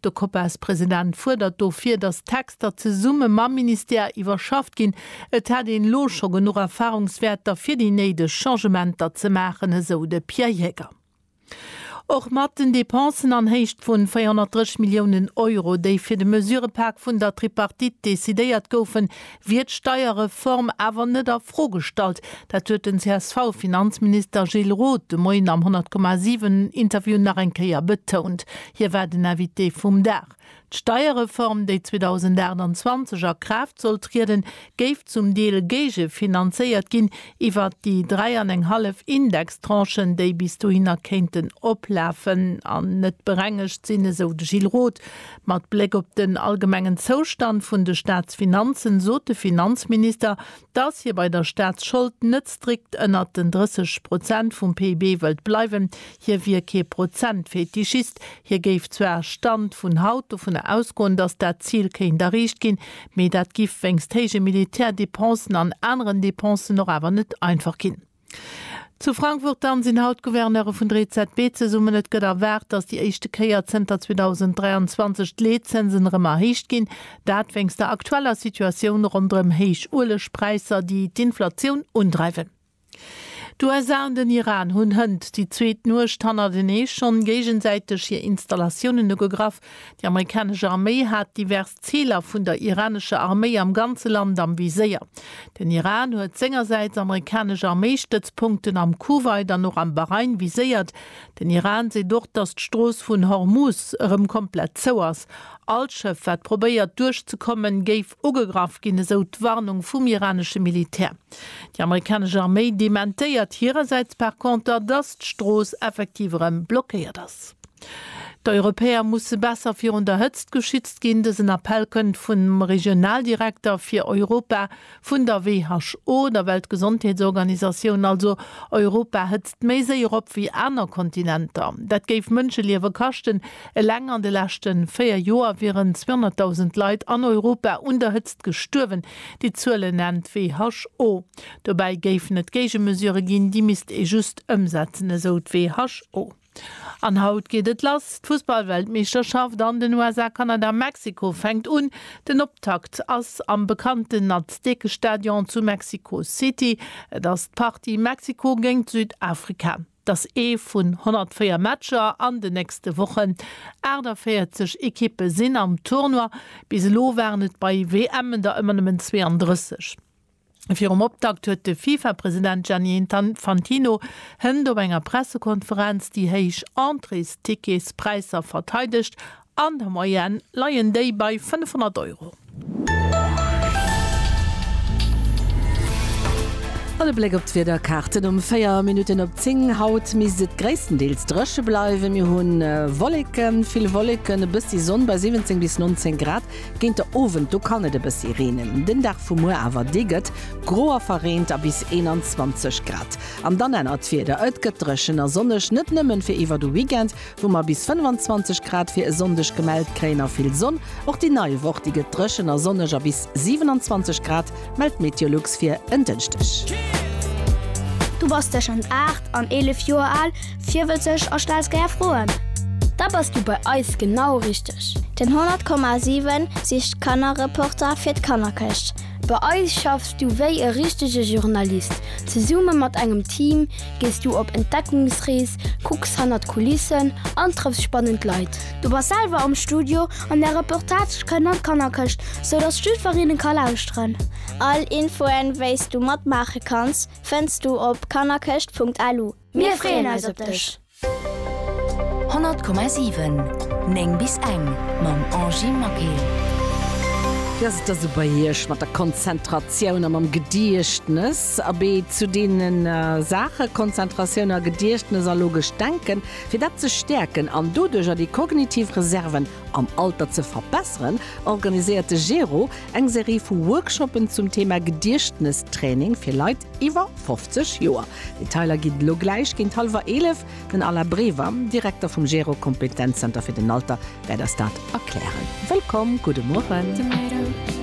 De Copas-President fuerdert dofir, datt d'Texter zesumme mam Ministère iwwerschafft ginn. Et hätt een elo scho genuch Erfarungswäerter, fir déi néideg Changementer ze maachen, esou de Pierre Jäger. Och mat den Depensen an Héicht vun 430 Milliounen Euro, déi fir de Mesurëpak vun der Tripartite decidéiert goufen, wier d'Steierreform awer net a Fro gestallt. Dat huet den CSV-Finanzminister Gilles Roth de Moien am 100,7 Interview nach eng Kéier betount. Hie war den Invité vum Dag. D'Steierreform, déi 2028 a Kraaft soll trieden, géif zum Deel géigefinanzéiert ginn iwwert déi dräi an eng hallef Indextranchen, déi bis dohinner kéinten oplafen an net berengegt sinn, esou de Gilles Roth. Mat Bléck op den allgemengen Zoustand vun de Staatsfinanzen sot de Finanzminister, dass hie bei der Staatsschold net strikt ënnert den 30 Prozent vum PIB wëllt bleiwen. Hie wier kee Prozentfetischist. Hie géif zwar, Stand vun haut, dovun ausgoen, dass dat Zil kéint erreecht ginn, mee dat giff wéinst héije Militärdepensen an aneren Depensen och awer net einfach ginn. Zu Frankfurt dann sinn haut d'Gouverneure vun der EZB zesummen. Et gëtt erwaart, datt déi éischte Kéier zënter 2023 d'Leetzinsen erëm erhéicht ginn. Dat wéinst der aktueller Situatioun ronderëm héich Uelegpräisser, déi d'Inflatioun undreiwen. D'USA an den Iran hunn hënt déi zweet Nuecht hannertenee schonn géigesäiteg hir Installatiounen ugegraff. Déi amerikanesch Arméi hat divers. D'Ziler vun der iranescher Arméi am ganze Land am Viséier. Den Iran huet sengersäits amerikanesch Arméistëtzpunkten am Kuwait an och am Bahrain viséiert. Den Iran seet och, datt d'Strooss vun Hormuz erëm komplett zou ass. All Schëff, wat probéiert duerch ze kommen, géif ugegraff ginn, esou d'Warnung vum iranesche Militär. Déi amerikanesch Arméi dementéiert hirersäits par conter, datt d'Strooss effektiv erëm blockéiert ass. D'Europäer musse besser virun der Hëtzt geschützt ginn. Dësen Appell kënnt vum Regionaldirekter fir Europa vun der WHO, der Weltgesondheetsorganisatioun. Also Europa hëtzt méi séier op wéi aner Kontinenter. Dat géif Mënscheliewe kaschten. Eleng an de leschte véier Joer wieren 200.000 Leit an Europa un der Hëtzt gestuerwen. Déi Zuele nennt d'WHO. Dobäi géifen et Géigemesure ginn, déi misst ee just ëmsetzen, esou d'WHO. An haut geet et lass, d'Fussballweltmeeschterschaft an den USA, Kanada, Mexiko fänkt un. Den Optakt ass am bekannten Aztekestadion zu Mexico City. Et ass d'Partie Mexiko géingt Südafrika. Et ass ee vun 104 Matcher an den nächste Wochen. 48 Ekippe sinn am Tournoi. Bis elo waren et bei WMen der ëmmer nëmmen 32. Virum Optakt huet de FIFA-President Gianni Infantino Hënt op enger Pressekonferenz déi héich Entréesticketspräisser verteidegt, an der Moyenne leien déi bei 500 Euro. An e Bléck op d'Wiederkaarten um 4 Minutten op 10. Haut misst et gréisstendeels dréche bleiwen. Mir hu Wolleken, vill Wolleken, e bëssi Sonn bei 17 bis 19 Grad. Géint de Owend, do kann et e bëssi reenen. Den Dag vu muer awer, dee gëtt gro a verreent a bis 21 Grad. An dann ännert d'Wieder, et gëtt dréchen a sonneg, net nëmmen fir iwwer de Weekend, wou mer bis 25 Grad fir e Sonndeg gemellt kréien a vill Sonn. Och déi nei Woch, déi gëtt dréchen a sonneg a bis 27 Grad, mellt Meteolux fir en Dënschdeg. Du bass tëschent 8 an 11 Joer al? Virwëtzeg a stells gär Froen? Da bass du bei eis genau richteg! Den 100,7 sicht d'Kannerreporter fir d'Kannerkëscht. Bei eis schaffs du wéi e richtege Journalist. Zesumme mat engem Team gees du op Entdeckungsrees, kucks hannert d'Kulissen an trëffs spannend Leit. Du bass selwer am Studio an där Reportage kënnt an d'Kannerkëscht, sou dass d'Schüfferinne ka lauschteren. All Infoen, wéis du matmaache kanns, fënns du op kannerkëscht.lu. Mir freeën eis op dech! 100,7 9 bis eng mam Angie Maquet. Wéi ass et da sou bei Iech mat der Konzentratioun a mam Gediechtnes? Abee, zu deene Saache Konzentratioun a Gediechtnes a logescht Denken, fir dat ze stäerken an doduercher déi kognitiv Reserven am Alter ze verbesseren, organiséiert de GERO eng Serie vu Workshoppen zum Thema Gediechtnestraining fir Leit iwwer 50 Joer. Detailer ginn elo gläich géint hallwer 11. Den Alain Brever, Direkter vum GERO Kompetenzzenter fir den Alter wäert eis dat erklären. Wëllkomm, gudde Mueren.